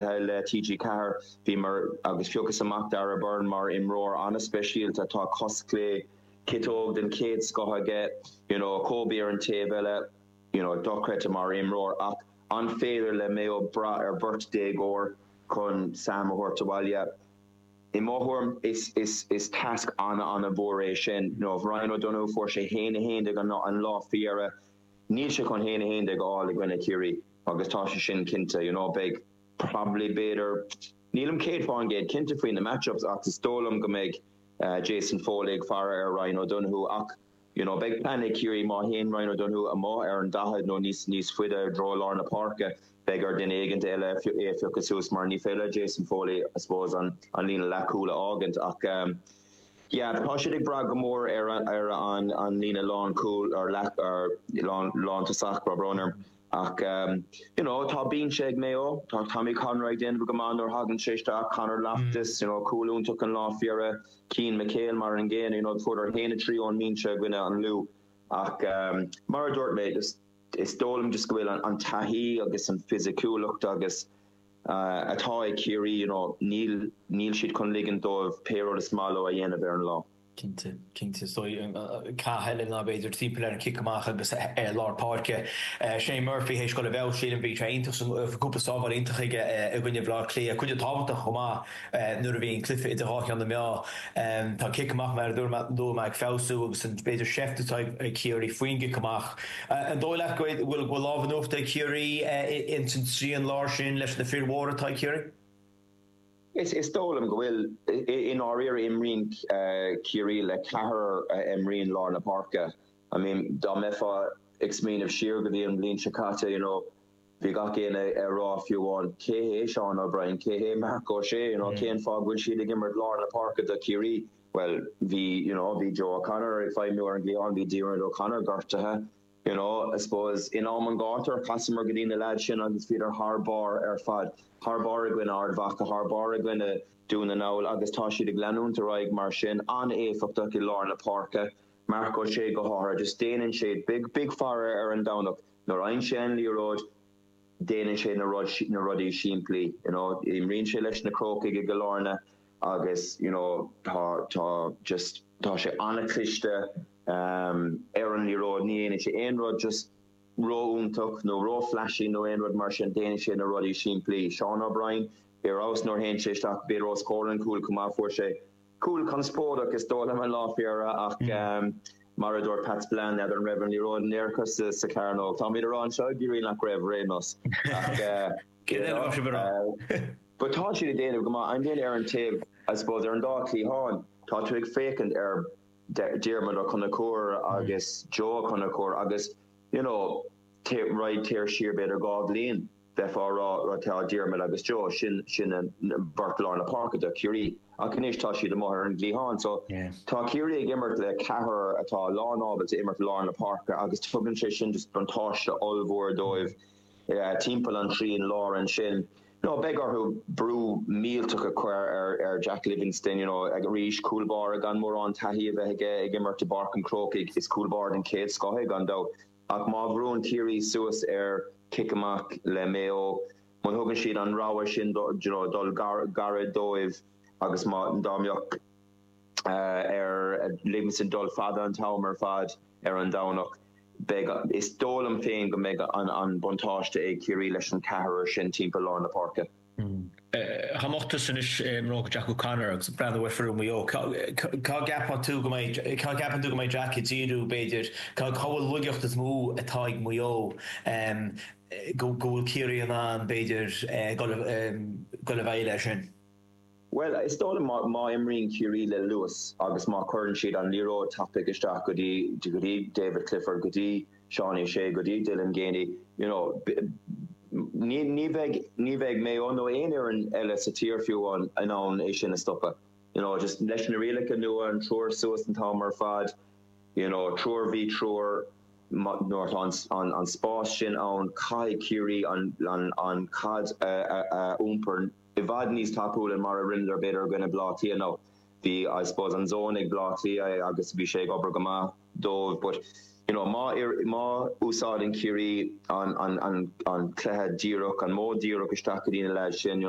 Le TG4, bhíomar, agus phiocas amach Darragh Beirne mar imreoir an-speisialta atá cos chlé, ciotóg den chéad scoth aige, you know Kobe ar an taobh eile, you know dochreidte mar imreoir ach an féidir le Mayo brath ar bheirt déagóir chun Sam a thabhairt abhaile? I mo thuairim, is is is tasc an-an-mhór é sin. You know Ryan O'Donoghue, fuair sé 1-11 an lá faoi dheireadh, níl sé chun 1-11 a fháil i gcoinne Chiarraí. Agus tá sé sin cinnte, you know, beidh probably, b'fhéidir, nílim céad fá an gcéad cinnte faoi na match-ups ach is dóigh liom go mbeidh Jason Foley ag faire ar Ryan O'Donoghue ach, you know, beidh plean ag Ciarraí má théann Ryan O'Donoghue amuigh ar an daichead nó níos níos faide i dtreo lár na páirce, beidh ar dhuine éigin eile é a phiocadh suas mar ní féidir le Jason Foley, I suppose, an an líne leathchúil a fhágaint ach, um, yeah, tá siad ag brath go mór ar ar an an líne lánchúil ar leath ar lán lán tosach, ró-bhrónach. Ach, you know, tá bínse ag Mayo, tá Tommy Conroy ag déanamh go maith nuair a thagann sé isteach, Conor Loftus, you know, cúl iontach an lá faoi dheireadh, Cian McHale mar an gcéanna, you know, fuaireadar a haon a trí ón mbínse i gcoinne an Lú. Ach mar a dúirt mé, is dóigh liom just go bhfuil an taithí agus an fisiciúlacht agus atá ag Ciarraí, you know, níl siad chun ligint dóibh pé rud is maith leo a dhéanamh ar an lá. Cinnte, cinnte. So cath eile b'fhéidir timpeall ar an chic amach agus ar lár páirce. Shane Murphy tar éis dul i bhfeabhas, sílim, bhí sé iontach sa, bhí cúpla sábháil iontach aige i gcoinne Bhaile Átha Cliath. Cuid thábhachtach chomh maith nuair a bhíonn cluiche idir dhá cheann na meá. Tá an cic amach mar a dúirt mé ag feabhsú agus an, b'fhéidir, seift atá ag Ciarraí faoin gcic amach. An dóigh leat go bhfuil lámh in uachtar ag Ciarraí ins an trian láir sin leis na fir mhóra atá ag Ciarraí? Is dóigh liom go bhfuil. I ndáiríre, imríonn Ciarraí le ceathrar a imríonn lár na páirce. I mean, dá mbeifeá ag smaoineamh siar go dtí an bhliain seo caite, you know, bhí gach éinne ag rá, fiú amháin, cé hé Seán O'Brien, cé hé Mark O'Shea, you know, cén fáth go bhfuil siad ag imirt lár na páirce do Chiarraí? Bhuel, bhí, you know, bhí Joe O'Connor ag feidhmiú ar an gcliathán, bhí Diarmuid O'Connor gortaithe. You know, I suppose, in am an ghátair, chasamar go dtí na lads sin agus bhíodar thar barr ar fad. Thar barr i gcoinne Ard Mhacha, thar barr i gcoinne Dún na nGall, agus tá siad ag leanúint ar aghaidh mar sin, an-éifeachtach i lár na páirce, Mark O'Shea go háithrid, just déanann sé, bí ag faire ar an Domhnach, nuair a fhaigheann sé an liathróid, déanann sé na rudaí simplí, you know, imríonn sé leis na Crócaigh i gCill Airne na. agus you know tá tá just tá sé an-cliste ehm ar an liathróid ní dhéanann sé aon rud just ró-fhiúntach nó ró-flashy nó aon rud mar sin déanann sé na rudaí simplí. Seán O'Brien ar fheabhas nuair a théann sé isteach b'fhéidir os comhair an cúl chomh maith fuair sé cúl conspóideach is dóigh liom an lá fé dheireadh ach ehm mar a dúirt Pat Spillane n'fheadar an raibh an liathróid in aerfort sa sa chearnóg. Táimid ag rá anseo go háirithe nach raibh aon nós ach eh, you know, eh, But tá siad ag déanamh go maith. I mean ar an taobh, I suppose, ar an dá chliathán, tá tú ag féachaint ar Diarmuid Ó Conchúir agus Joe Ó Conchúir agus, you know, raghaidh tú siar b'fhéidir dhá bhliain, bheifeá ag rá, tá Diarmuid agus Joe, sin, sin an bheirt lár na páirce do Chiarraí. Ach anois tá siad amuigh ar an gcliathán. So tá Ciarraí ag imirt le ceathrar atá lán ábalta imirt lár na páirce agus tugann sé sin just buntáiste ollmhór dóibh. timpeall an trian láir ansin so beidh orthu brú millteach a chur ar Jack Livingstone you know arís cúl báire gan mórán taithí a bheith aige ag imirt i bPáirc an Chrócaigh is cúl báire den chéad scoth é gan dabht ach má bhrúann Ciarraí suas ar chic amach le Maigh Eo muna thugann siad an rogha sin do you know dul gairid dóibh agus má dá mbeadh ar an leaid sin dul fada an t-am ar fad ar an Domhnach. Beidh Is dóigh liom féin go mbeidh an an buntáiste ag Ciarraí leis an ceathrar sin timpeall lár na páirce. Dá mbeifeása anois i mbróga Jack O'Connor agus ag breathnú ar foireann Mhaigh Eo. Cá gceapann tú go mbeidh cá gceapann tú go mbeidh Jack ag díriú b'fhéidir? Cá cá bhfuil an laigeacht is mó atá ag Maigh Eo go go bhfuil Ciarraí in ann b'fhéidir dul dul i bhfeidhm ar sin? Bhuel, is dóigh liom má imríonn Ciarraí le luas agus má chuireann siad an liathróid tapaidh isteach go dtí go dtí David Clifford, go dtí Seán O'Shea, go dtí Dylan Geaney, you know, ní ní bheidh ní bheidh Maigh Eo nó aon fhoireann eile sa tír fiú in ann é sin a stopadh. You know, just leis na rialacha nua, an triúr suas an t-am ar fad, you know, triúr V triúr, má nuair atá an an an spás sin ann, caithfidh Ciarraí an an an caid a a a iompar. i bhfad níos tapúla ná mar a rinneadar b'fhéidir i gcoinne Bleá Cliath nó bhí I suppose an zone ag Bleá Cliath é agus bhí sé ag obair go maith dóibh but you know má má úsáideann Ciarraí an an an an cluiche díreach an modh díreach isteach go dtí na leaids sin you know